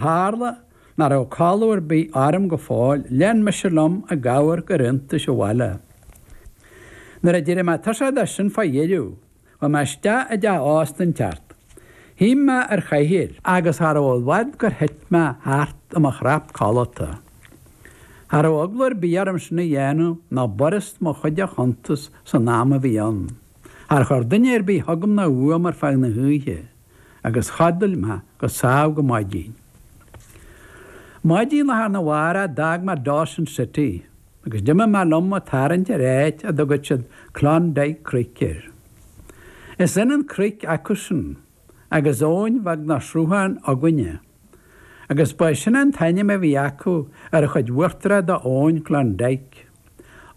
Tharla nach raibh codladh ar bith orm go fóill, lean mise liom ag amharc ar iontais an bhaile. Nuair a d'éirigh mé tuirseach de sin fá dheireadh, chuaigh mé isteach i dteach ósta den tseort. Shuigh mé ar chathaoir, agus cha raibh i bhfad gur thit mé thart i mo chnap codlata. Cha raibh eagla ar bith orm sin a dhéanamh, nó b'fhurast mo chuid a chuntas san am a bhí ann. Char chuir duine ar bith chugam ná uaim ar feadh na hoíche. agus chodail mé go sámh go maidin. Maidin lá arna mhárach d'fhág mé Dawson City agus d'imigh mé liom a' tarraingt ar áit a dtugaid siad Klondike Creek air. Is ionann creek acusan agus abhainn bheag nó sruthán againne agus ba é sin an t-ainm a bhí acu ar an chuid uachtarach d'Abhainn Klondike,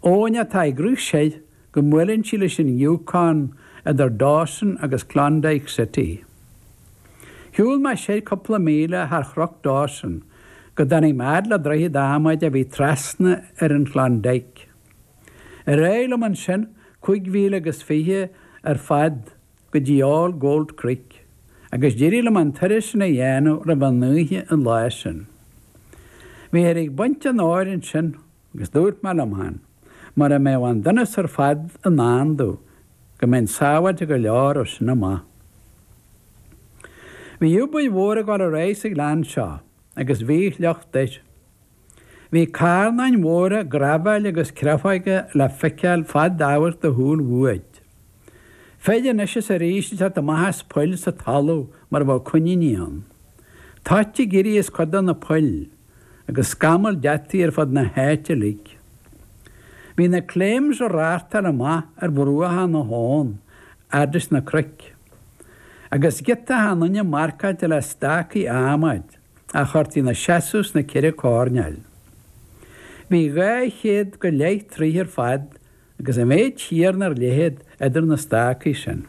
abhainn atá ag rith siar go mbuaileann sí leis an Yukon idir Dawson agus Klondike City. Shiúil mé siar cúpla míle thar Chnoc Dawson go dtáinig mé fhad le droichead adhmaid a bhí trasna ar an Klondike. Ar aghaidh liom ansin cúig mhíle agus fiche ar fad go dtí All Gold Creek agus d'éirigh liom an turas sin a dhéanamh roimh an oíche an lá sin. Bhíthear ag baint an óir ansin. Agus dúirt mé liom féin, mura mbeadh an donas ar fad i ndán domh, go mbeinn sábháilte go leor ó sin amach. Bhí obair mhór ag dul ar aghaidh sa ghleann seo agus bhí a shliocht air. Bhí carnáin mhóra graibhéil agus créafóige le feiceáil fad amhairc do shúl uait. Fir anois is arís isteach is amach as poill sa talamh mar a bheadh coiníní ann. Toit ag éirí as cuid de na poill, agus scamaill deataigh ar fud na háite uilig. Bhí na claims ag reáchtáil amach ar bhruacha na habhann fhad leis na cnoic, agus giota achan duine marcáilte le stácaí adhmaid a chuirtí ina seasamh sna ceithre coirnéil. Bhí dhá chéad go leith troigh ar fad Agus an méid céanna ar leithead idir na stácaí sin.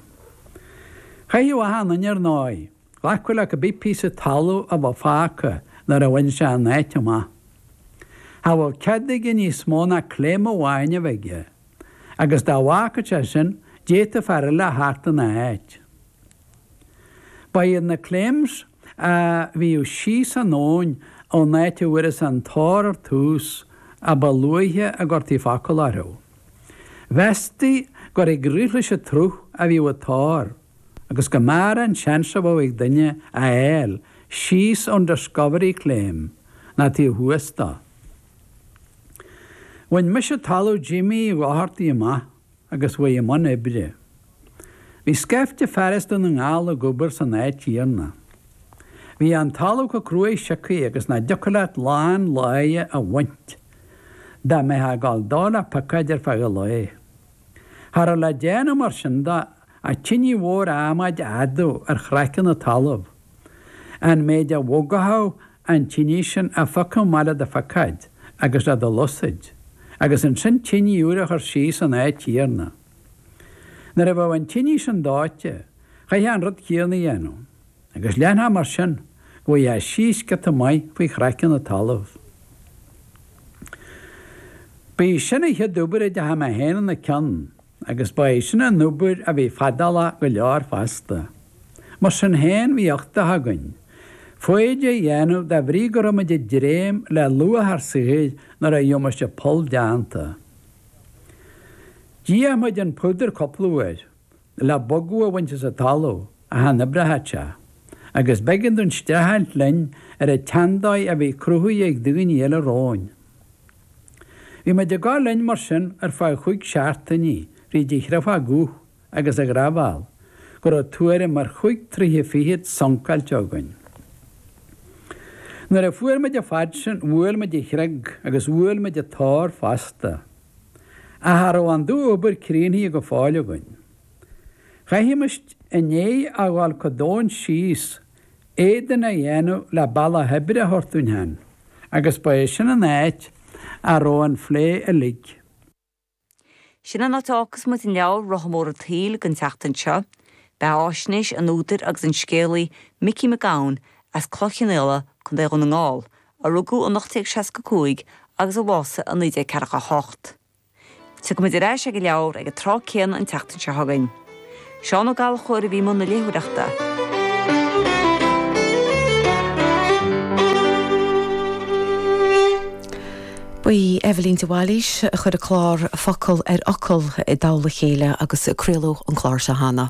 Chaithfeadh achan duine ar ndóigh, glacadh le cibé píosa talaimh a bheadh fágtha nuair a bhain sé an áit amach. Cha bhfuil cead aige níos mó ná claim amháin a bheith aige, agus dá bhfágfadh sé sin, d'fhéadfadh fear eile a theacht ina áit. Ba iad na claims a bhíodh síos an abhainn ón áit a bhfuarthas an t-ór ar tús a ba luaithe a gcuirtí focal orthu. Mheastaí gur ag rith leis an tsruth a bhíodh an t-ór agus go mb'fhearr an seans a bheadh ag duine a fháil síos ón discovery claim ná taobh thuas dó. Bhain mise talamh Jimmy Doherty amach. agus chuaigh i mbun oibre. Bhí scaifte fear as Dún na nGall ag obair san áit chéanna. Bhí an talamh chomh cruaidh siocthaí agus nach dtiocfadh leat lán lae a bhaint dá mbeifeá ag gabháil dó le piocóid ar feadh an lae. Cha raibh le déanamh mar sin de ach tinidh mhór adhmaid a fhadú ar chraiceann an talaimh. An méid a bhogfadh an tinidh sin a phiocadh amach le do phiocóid agus le do shluasaid, agus ansin tinidh úr a chur síos san áit chéanna. Nuair a bheadh an tinidh sin dóite, chaithfeá an rud céanna a dhéanamh, agus leanfá mar sin go bhfaigheá síos giota maith faoi chraiceann an talaimh. Ba í sin an chéad obair a dteachaidh mé féin ina cionn. Agus ba é sin an obair a bhí fadálach go leor fosta. Mar sin féin, bhí uchtach againn foighid a dhéanamh de bhrí go raibh muid ag dréim le luach ár saothair nuair a gheobhaimis an poll déanta. D'fhéach muid an púdar cúpla uair le bogadh a bhaint as an talamh ach chan oibreochadh sé, agus b'éigean dúinn streachailt linn ar an tseandóigh a bhí cruthaithe ag daoine eile romhainn. Bhí muid ag gabhail linn mar sin ar feadh chúig seachtainí, fríd chré bhogach agus graibhéal go raibh tuairim ar chúig troithe fichead suncáilte againn. Nuair a fuair muid an fad sin, bhuail muid an chreag agus bhuail muid an t-ór fosta. Ach cha raibh an dú-obair críochnaithe go fóill againn. Chaithfimis i ndiaidh a dhul go domhain síos Éadain a dhéanamh le bealach oibre a thabhairt dúinn féin, agus ba é sin an áit a raibh an phlé uilig. Sin an áit a fhágfas muid an leabhar, Rotha Mór an tSaoil, don tseachtain seo. Beatháisnéis an údair agus an scéalaí, Micí Mac Gabhann, as Cloich Chionnaola, Co. Dhún na nGall, a rugadh in 1865 agus a bhásaigh in 1948. Tiocfaimid ar ais ag an leabhar ag an tráth céanna an tseachtain seo chugainn. Seán Ó Gallchóir a bhí i mbun na léitheoireachta. Ba í Eibhlín de Bhailís a chuir an clár Focal ar Fhocal i dtoll a chéile agus craoladh an clár seo cheana.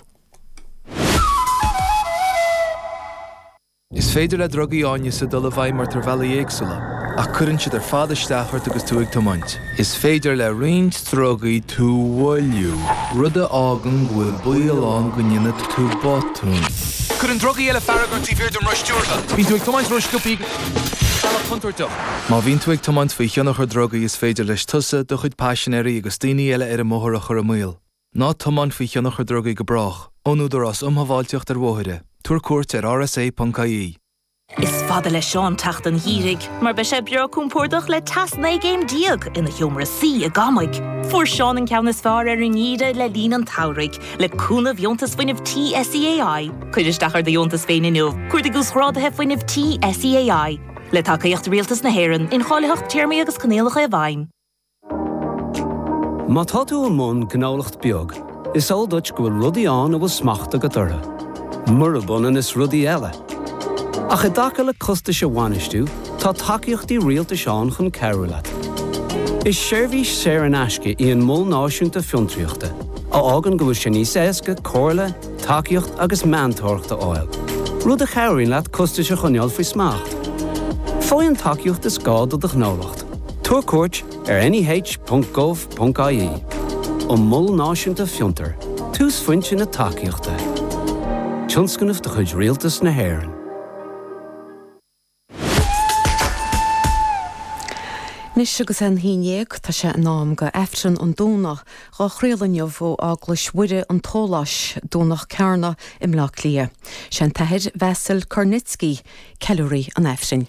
Is féidir le drugaí áineasa dul i bhfeidhm ort ar bhealaí éagsúla, ach cuireann siad ar fad isteach ort agus tú ag tiomáint. Is féidir le roinnt drugaí tú a mhoilliú, rud a fhágann go bhfuil baol ann go ndéanfaidh tú botún. Cuireann drugaí eile fearg ort taobh thiar den roth stiúrtha. Bíonn tú ag tiomáint ró-sciobtha agus ar bhealach contúirteach. Má bhíonn tú ag tiomáint faoi thionchar drugaí is féidir leis tusa, do chuid paisinéirí agus daoine eile ar an mbóthar a chur i mbaol. Ná tiomáin faoi thionchar drugaí go brách. Ón Údarás Um Shábháilteacht ar Bhóithre. Tabhair cuairt ar rsa.ie. Is fada le Seán teacht an Gheimhridh mar beidh sé breá cúmpórdach le teas 19 gcéim ina sheomra suí i gCamaigh. Fuair Seán an ceann is fearr ar an nGeimhreadh le linn an tSamhraidh le cúnamh Dheontas Fuinnimh Tí SEAI. Cuir isteach ar do dheontas féin inniu, Cuardaigh Uasghrádaithe Fuinnimh Tí SEAI. Le tacaíocht Rialtas na hÉireann, incháilitheacht, téarmaí agus coinníollacha i bhfeidhm. Má tá tú i mbun gnólacht beag, is eol duit go bhfuil rudaí ann a bhfuil smacht agat orthu, murab ionann is rudaí eile. Ach i dtaca le costais a bhainistiú, tá tacaíochtaí rialtais ann chun cabhrú leat. Is seirbhís saor in aisce í an Mol Náisiúnta Fiontraíochta, a fhágann go bhfuil sé níos éasca comhairle, tacaíocht agus meantóireacht a fháil, rud a chabhraíonn leat costais a choinneáil faoi smacht. Faigh an tacaíocht is gá do do ghnólacht. Tabhair cuairt ar neh.gov.ie An Mol Náisiúnta Fiontar, túsphointe na tacaíochta. Tionscnamh de chuid Rialtas na hÉireann. Anois agus é an haon déag, tá sé in am go Aifreann an Domhnaigh, dhá chraoladh inniu ó Eaglais Mhuire an tSóláis, Domhnach Cearna i mBleá Cliath. Sé an tAthair Vasyl Kornicki ceiliúraí an Aifrinn.